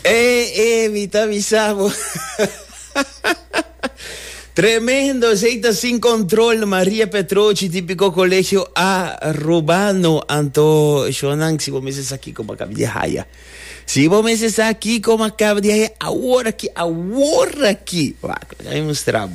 E, e, mi ta bisa bo. Tremendo, esei ta sin control. Maria Petrochi, típico colegio A, Rubano, Anto, Shonan, si bo meses aquí como acaba de haya. Si bo meses aquí como acaba de haya, ahora aquí, ahora aquí. Wacht, ik ga je mostrabo.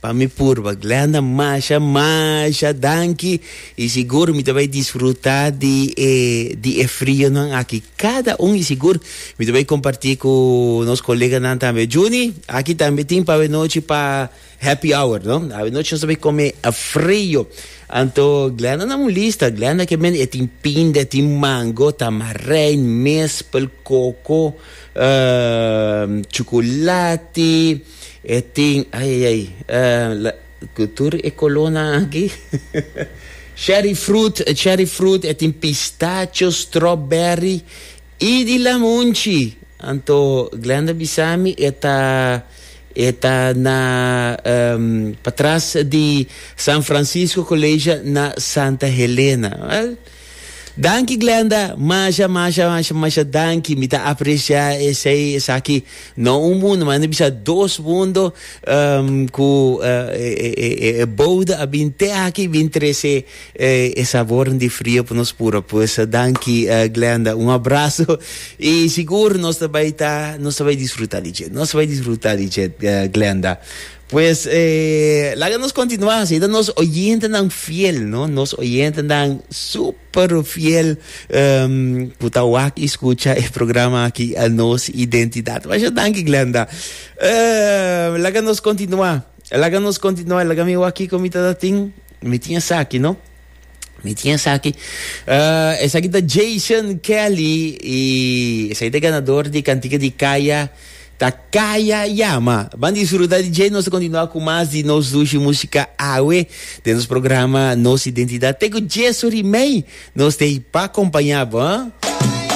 Pa mi purba Glenda masha masha danki y sigur mi ta bay disfruta di e di e frionan aki cada un y sigur mi ta bay comparti cu nos coleganan tambe Junie aki tambe tin pa awenochi pa happy hour no awenochi nos ta bay come frio anto Glenda na un lista Glenda ke men e tin pinda e tin mango tamarind mispel coco uh chocolati E tin ay ay ay la cu tur e colonan aki. Cherry fruit, cherry fruit, e tin pistacho, strawberry y di lamunchi. Anto Glenda bisami e ta e ta na um, patras di San Francisco College na Santa Helena. Well. Danki Glenda, masha masha masha masha danki, mi ta aprecia esey esaki, no un mundo manda bisa dos mundo um, cu uh, e, e, e, e, e bouda a bin te aki bin trece eh, e sabornan di frio pa nos puro, pues danki uh, Glenda, un abrazo y sigur nos ta bay ta, nos ta bay disfruta di dje, nos ta bay disfruta di dje uh, Glenda. Pues laga nos continua hasi ta nos oyentenan fiel, no, nos oyentenan super fiel um, cu ta wak y scucha e programa aki Nos Identidad. Masha danki Glenda. Uh, laga nos continua, laga nos continua, laga mi wak kico mi ta tin, mi tin esaki, no. Mi tin esaki. Uh, esaki ta Jason Kelly y esaki ta ganador di cantica di Kaya ta Kaya Yama. Van disfruta di Jay, nos continua cu mas di nos dushi música awe de nos programa Nos Identidad. Te cu Jesu rimei, nos te pa acompaña bo.